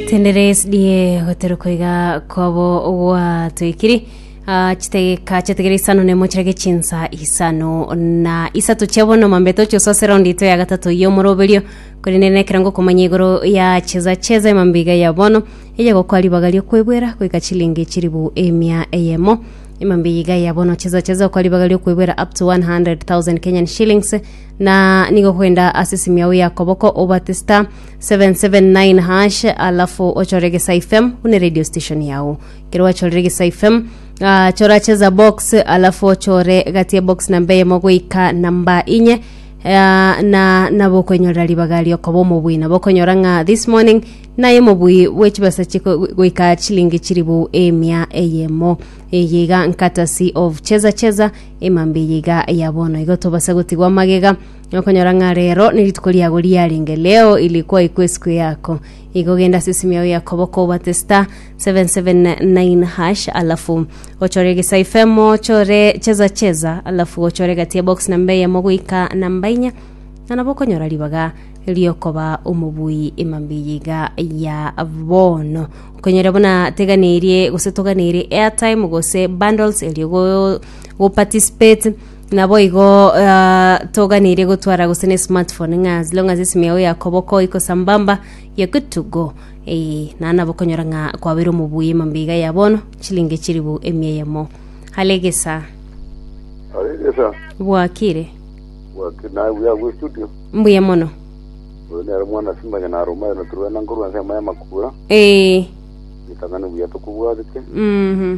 Tenderes die goteruka iga kwabo gwatoikiri Ah, chitegeka chiategera isano nemo chirage chinsa isano na isato chia bono mambeto chioso ase raundi ito ya gatato y'omoroberio korende nekero ngokomanya igoro ya cheza cheza emambiga ya bono eye gokwa ribaga riokwebwera goika chilingi chiribu emia eyemo emambiga ya bono cheza cheza okwa ribaga riokwebwera up to 100,000 Kenyan shillings na nigo kwenda ase simiao ya koboko obate star 779 hash alafu ochore gesa fm hune radio station yao kero wachorire gesa fm uh, chora cheza box alafu ochore gatie box namba eyemo goika namba inye uh, na nabo okonyorera ribaga riokoba omobui nabo okonyora ng'a this morning naye omobui bwechibesa chiko goika chilingi chiribu emia eyemo eye iga nkatasi of cheza cheza emambe eye iga ya bono igo tobase gotigwa magega Okonyora ng'a reero nerituko riago riarenge leo ili kwaikwa esiko yako, igo genda ase esimi yao ya koboko obate star 779 hash alafu ochore egesaifemo ochore cheza cheza alafu ochore gati ya box namba eyemo goika namba inya na nabo okonyora ribaga riokoba omobui emambiyi iga ya bono okonyora buna teganeirie gose toganeirie airtime gose bundles erio go, go participate Naboigo uh, toganeire gotwara gose ne smartphone ng'a as long as esimi yao ya koboko iko sambamba ya good to go eh, na nabo konyora ng'a kwabere omobuya emambiga ya bono chilinge chiribu emia eyemo halegesa aregesa bwakire wake naye buya gwe studio mbuya mono oyo nero mwana simanya naruma eno turwena nkorwa nsema ya makura eh, gitang'ani buya tukubwatete mhm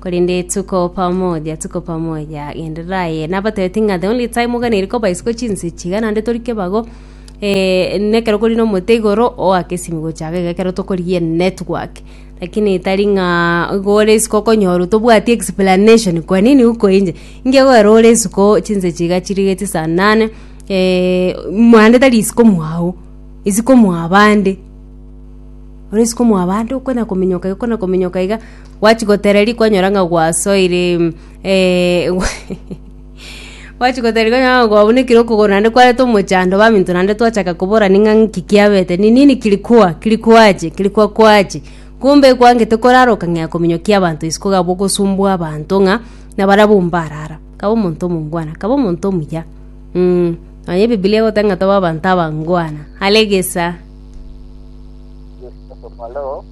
Korende tuko pamoja, tuko pamoja, genderera aye. Nabatebeti ng'a the only time oganeri koba isiko chinse chiga nande tori kebago eh, nekero kori nomote igoro oakesimi gochaga iga ekero tokorigia network lakini tari ng'a igo ore isiko okonyora tobwati explanation kwa nini uko inje inge goera ore isiko chinse chiga chirigeti saa nane eh, mande tari isiko mwao isiko mwabande ore isiko mwabande okona kominyoka iga okona kominyoka iga Gwachi gotereria kwanyora ng'a gwasoire eh, gwachi gotereria kwanyora ng'a gwabunekire okogoro naende kwareta omochando baminto naende twachaka koborani ng'a nki kiabete ni nini kilikuwa kilikuwache kilikuwakwache kumbe ekwangete korara okang'ea kominyokia abanto isiko gabo ogosumbua abanto ng'a na barabwo mbarara kaba omonto omongwana kaba omonto omuya mm, nonya ebibilia egoteba ng'a toba abanto abangwana are gesa Yesu Kristo omoloo.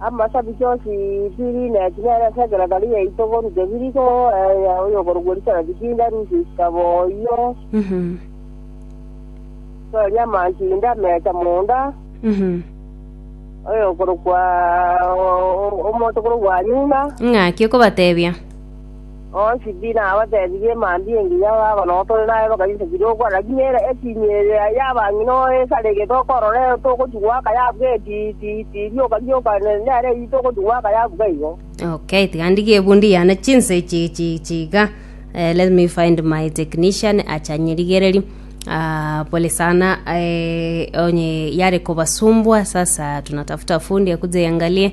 Amasabichi o Sipiri ne Kinere ase ekeratari giaito korwa Debiri koeea oyokorokwa Risereti kiinda rusia isiko boiyo, toria amanchuri inde amecha monda, oyokorokwa omonto korokwa Anyuna. Ng'aki okobatebia? Onsi pi nabatebirie, mambia engiya baba nonya tore naye bakayusa chirokwa, lakini ere etinyi eye y'abang'ina oesarigete okorora ere togochia goaka yabuga eti iti iti rioka rioka nere eri togochia goaka yabuga igo. Okay, tiga ndigie ebu ndiyane chinse ichi ichi ichi iga. Eh, let me find my technician acha nyirigereri. Ah, pole sana eh, onye yare kobasumbwa sasa tunatafuta fundi akuje yangalie